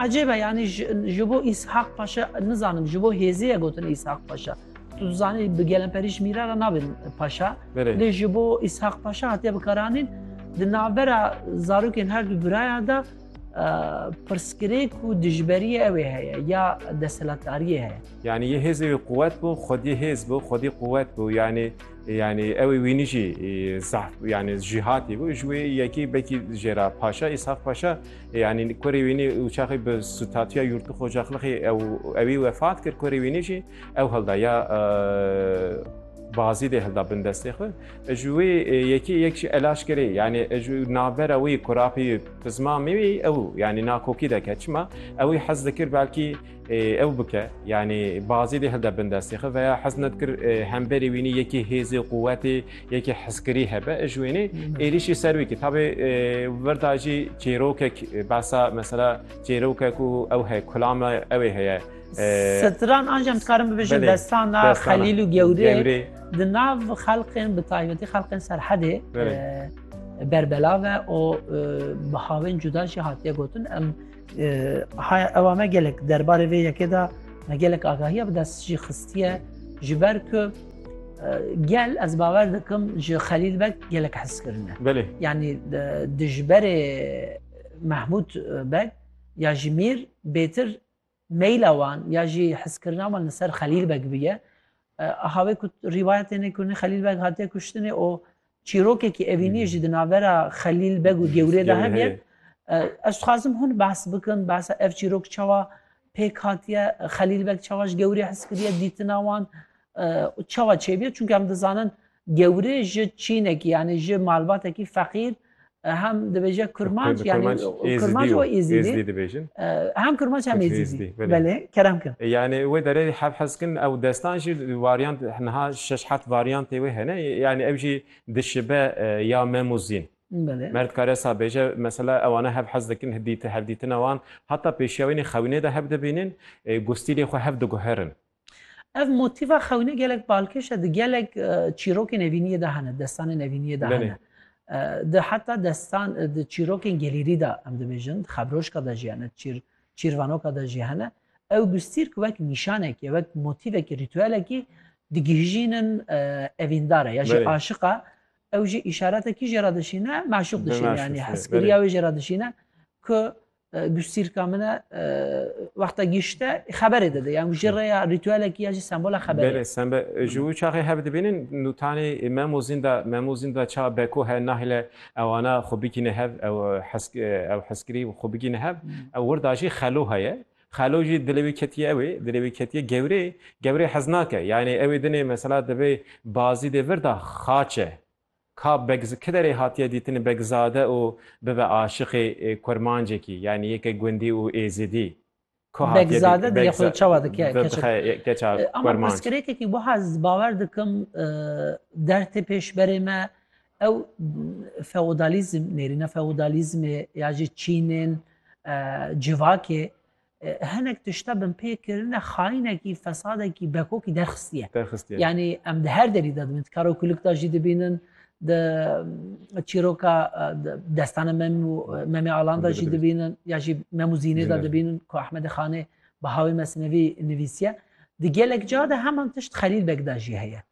Ecêb e yanî ji bo Îshaq Paşa nizanim ji bo hêzê ye gotin Îshaq Paşa. Tu zanî bi gelemperî ji mîra re nabin paşa. Lê ji bo Îshaq Paşa hatiye bikaranîn di navbera zarokên her du biraya de pirsgirêk û dijberiyê ew ê heye ya desthilatdariyê heye. Yanî yê hêzê wê quwet bû, xwediyê hêz bû, xwedî quwet bû yanî Yanî ewê wînî jî zaf yanî jîhatî bû ji wê yekî bekî jêra paşa îshaf paşa yanî korê wînî û çaxî bi sutatiya yurtu xocaxlixî ew ewî wefat kir korê wînî jî ew hilda ya bazî dê hilda bin destê xwe ji wê yekî yek jî elaş kirê yanî ji navbera wî kurapî pizma mî ew yanî nakokî deke çima ewî hez dikir belkî Ew bike yanî bazê dê hilde bin destê xwe veya hez nedikir hemberê wînî yekî hêzê quwetê yekî heskirî hebe ji wênê êrîşî ser wî kî tabê wirda jî çêrokek besa mesela çêrokek û ew he kulame ew ê heye Sitran ancem dikarim bibêjin destana xelîl û gewrê di nav xelqên bi taybetî xelqên serhedê berbelave û bi havên cuda jî hatiye gotin em Haya ewa me gelek derbarê vê yekê de me gelek agahiya bi dest jî xistiye ji ber ku gel ez bawer dikim ji Xelîl Beg gelek hez kirine. Belê. Yanî dijberê Mahmud Beg ya ji Mîr bêtir meyla wan ya jî hizkirina wan li ser Xelîl Beg biye. Axavê ku rîwayetê ne kûrnî Xelîl Beg hatiye kuştinê û çîrokekî evîniyê jî di navbera Xelîl Beg û Gewriyê de hebe. Ez dixwazim hûn behs bikin, behsa ev çîrok çawa pêk hatiye, Xelîl Beg çawa ji Gewriyê hez kiriye, dîtina wan çawa çêbûye. Çunke em dizanin Gewri ji çînekî yanî ji malbatekî feqîr hem dibêje kurmanc yanî kurmanc û êzîdî dibêjin hem kurmanc hem êzîdî belê kerem kin. Yanî wê derê hev hez kin ew destan jî varyant niha şeş heft varyantê wê hene yanî ew jî dişibe ya mem û zîn. Mer dikare sa bêje mesela ewana hev hez dikin hevdîtina wan heta pêşiya wînî xewînê de hev dibînin û stilê xwe hev diguherin. Ev motîfa xewînê gelek balkêş e di gelek çîrokên evîniyê de hene, destanên evîniyê de hene. Di heta destan di çîrokên gelîrî de em dibêjin, di xebrojka de jî hene, çîr çîrvanoka de jî hene. Ew gustîrk wek nîşanekî, wek motîvekî, rîtuelekî digihîjînin evîndare ya jî aşiqa ew jî îşaretekî jê re dişîne, meşûq dişîne yanî heskiriya wê jê re dişîne ku Gustîrka min e wexta gişte xeberê dide yan ji rêya rîtûelekî ya jî sembola xeberê. Belê sembe ji wî çaxê hev dibînin nûtanê memûzîn de memûzîn de ça beko he nahile ewana xwe bikîne hev ew hesk ew heskirî xwe bikîne hev ew wir da jî xelo heye. Xelo jî dilê wî ketiye ew ê dilê wî ketiye gewrê gewrê hez nake yanê ew ê dinê mesela divê bazî dê vir da xaç e Ka Begz kiderê hatiye dîtin Begzade û bibe aşiqê kurmancekî yanî yeke gundî û êzidî? Ku hatiye dîtin Begzade diye xwe çawa dike keçik? Bibe keça kurmanc. Ama pirsgirêkekî wiha ez bawer dikim der tê pêşberê me ew feodalîzm nêrîna feodalîzmê ya jî çînên civakê hinek tişta binpêkirine xayînekî, fesadekî, bekokî derxistiye. Derxistiye. Yanî em di her derî de dibin, di karokuluk de jî dibînin, di çîroka destane mem û memê alan de jî dibînin, ya jî mem û zînê de dibînin ku Ahmedê Xanê bi hawê mesinevî nivîsiye. Di gelek ca de heman tişt Xelîl Beg de jî heye.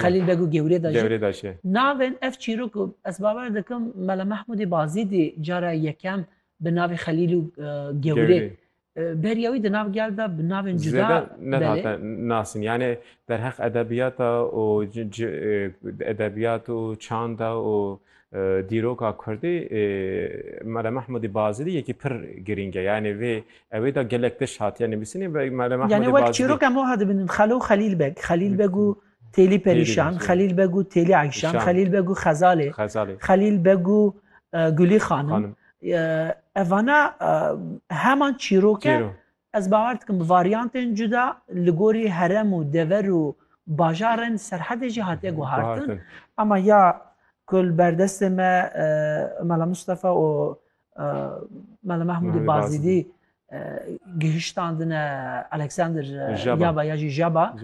Xelîl Beg û Gewrêdaş e. Navên ev çîrok ku ez bawer dikim Mela Mehmûdê Bazîdî cara yekem bi navê Xelîl û Gewrê beriya wî di nav gel de bi navên cuda Zêde nehate nasin yanê derheq edebiyata û edebiyat û çanda û Dîroka Kurdî Mele Mehmûdî Bazidî yekî pir girîng e. Yanî vê ewê de gelek tişt hatiye nivîsîn ê Mele Mehmûdî Bazidî. Yanî wek çîrok em wiha dibînin Xelo û Xelîl Beg, Xelîl Beg û Têlî Perîşan, Xelîl Beg û Têlî Eyşan, Xelîl Beg û Xezalê, Xelîl Beg û Gulî Xanim. Evana heman çîrok e Ez bawer dikim bi varyantên cuda li gorî herem û dever û bajarên serhedê jî hatiye guhartin. Ema ya ku li berdestê me Mela Mustafa û Mela Mehmûdê Bazidî gihiştandine Alexander Jaba ya jî Jaba,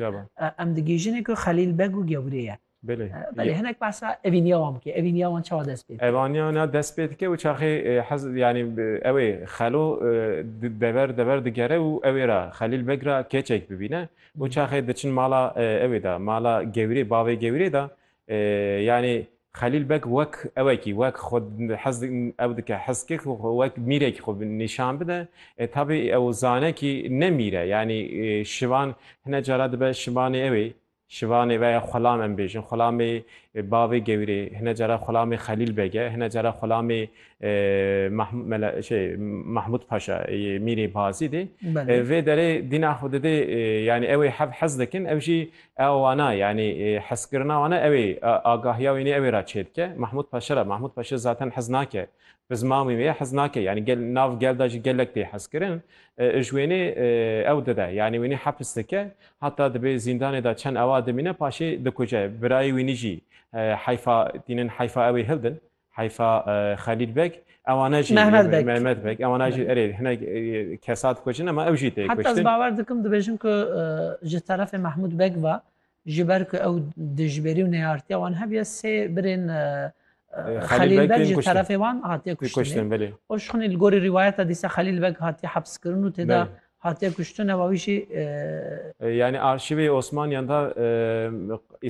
em digihîjin ku Xelîl Beg û gewrê ye. Belê. Belê hinek behsa evîniya wan bike. Evîniya wan çawa dest pê dike? Evaniya wan dest pê dike û çaxê hez yanî ew ê xelo dever dever digere û ew ê re Xelîl Beg re keçek bibîne û çaxê diçin mala ew ê de mala gewîrê bavê gewîrê de yanî Xelîl Beg wek ewekî wek xwe hez ew dike heskê ku wek mîrekî xwe nîşan bide. E tabî ew zane kî ne mîr e yanî şivan hine cara dibe şivanê ew ê Şivanê veya Xulam em bêjin. Xulamê bavê gewirê, hine cara Xulamê Xelîl Beg e, hine cara Xulamê Mahmûd Paşa yê Mîrê Bazîdê. Vê derê dîna xwe didê yanî ewê hev hez dikin, ew jî a wana yanî hezkirina wan e, ewê agahiya wînê ewê ra çêdike. Mahmûd Paşa ra, Mahmûd Paşa zaten hez nake, bi ziman wî ye hez nake. Yanî gel nav gel de jî gelek tê hezkirin. Ji wênê ew dide, yanî wînê hepis dike. Heta dibê zîndanê de çend awa dimîne paşê dikuce. Birayê wî nijî heyfa tînin, heyfa ewê hildin, heyfa Xelîl Beg, ewane jî Mehmet Beg, ewane jî erê hinek kesa dikucin ama ew jî tê kuştin. Heta ez bawer dikim dibêjin ku ji terefê Mehmûd Beg ve ji ber ku ew dijberî û neyartiya wan hebûye sê birên Xelîl Beg ji terefê wan hatiye kuştin. Oşxunî li gorî rîwayeta dîsa Xelîl Beg hatiye hepskirin û tê de Hatiye kuştin eva wî jî. Yanî arşîvê Osmaniyan de.